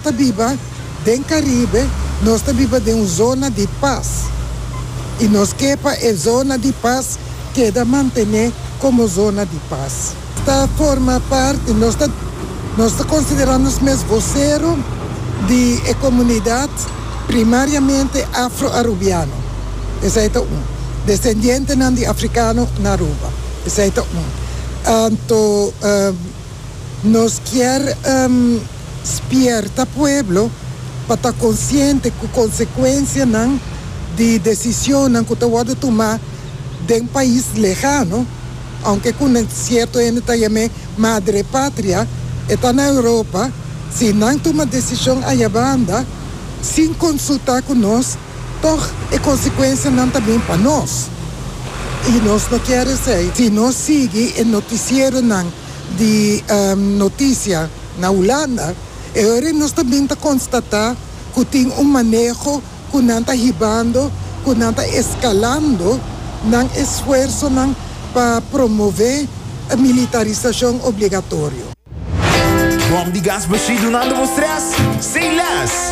Ta biba den Caribe, nos ta biba den un zona di pas y nos ke pa e zona di pas keda mantene como zona di pas. Ta forma parti, nos ta nos ta considera nos mes vocero di e comunidad primariamente Afro-Arubiano, esai ta un. Descendientenan di Africano na Aruba, esai ta un. Anto Nos kier spierta pueblo pa ta konsiente ku konsekuensianan di desisionnan ku ta wòrdu tumá den pais lehano, ounke ku nan sierto hende ta yam'é madre patria, e ta na Europa, si nan tuma desishon ayabanda sin konsultá ku nos, tòg e konsekuensianan ta bin pa nos. I nos no kier esei. Si nos sigui e notisieronan di notisia na Hulanda, e ora nos ta bin ta konstatá ku tin un maneho ku nan ta hibando, ku nan ta eskalando nan esfuersonan pa promové militarisashon obligatorio. Bòm di gas Bushido no anda bo strès? Say less!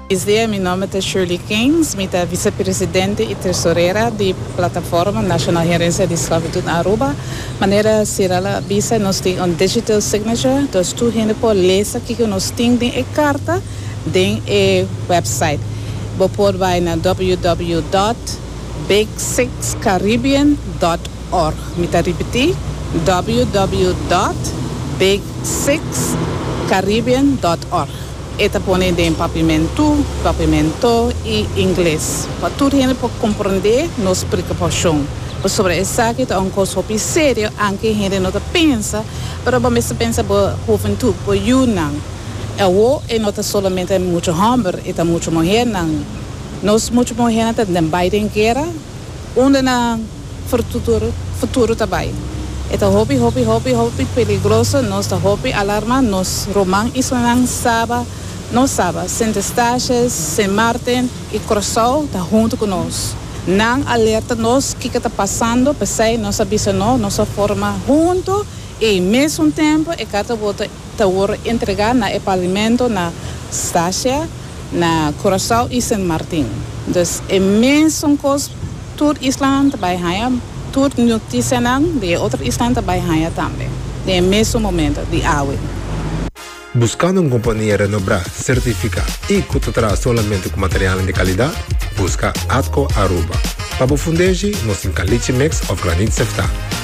Buenos dia, mi nomber ta Shirley Keynes, mi ta vicepresidente y tresorera di Plataforma Nacional Herencia di Sclavitud Aruba. Manera Cyril a bisa nos tin un digital signature, dus tur hende por lesa kico nos tin den e carta den e website. Bo por bay na www dot big six caribbean dot org. Mi ta ripeti www dot big six caribbean dot org. E ta pone den papimentu, papimento, i ingles pa tur hende por komprondé nos preokupashon. Pasobra esaki ta un kos hopi serio anke hende no ta pensa, pero bo mester pensa bo huventud, bo yunan. Awo e no ta solamente muchu hòmber, e ta muchu muhèrnan. Nos muchu muhèrnan ta den bai den guera, unda nan futuro ta bai. E ta hopi hopi hopi hopi peligroso, nos ta hopi alarma, nos ruman islanan saba, nos saba, Sint Eustatius, Sint Maarten y Curaçao ta hunto cu nos. Nan alerta nos kico ta pasando, p'esey nos a bisa no, nos a forma hunto y mesun tempo e carta bota. ta wor entrega na e pavimento na Sasha, na Curaçao y Sint Maarten. Dus e mesun cos tur islanan ta bay haya, tur noticianan di e otro islanan ta bay haya tambe den e mesun momento di awe. Buscando un compania renobrá, certificá y cu ta traha solamente cu materialnan di calidad? Busca Atco Aruba. Pa bo fundegi, nos tin Caliche Mix of Granit Sefta.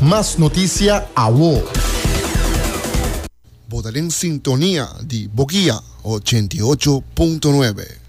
Mas noticia awo. Bo ta den sintonia di Bokia ochenta i ocho punto nuebe.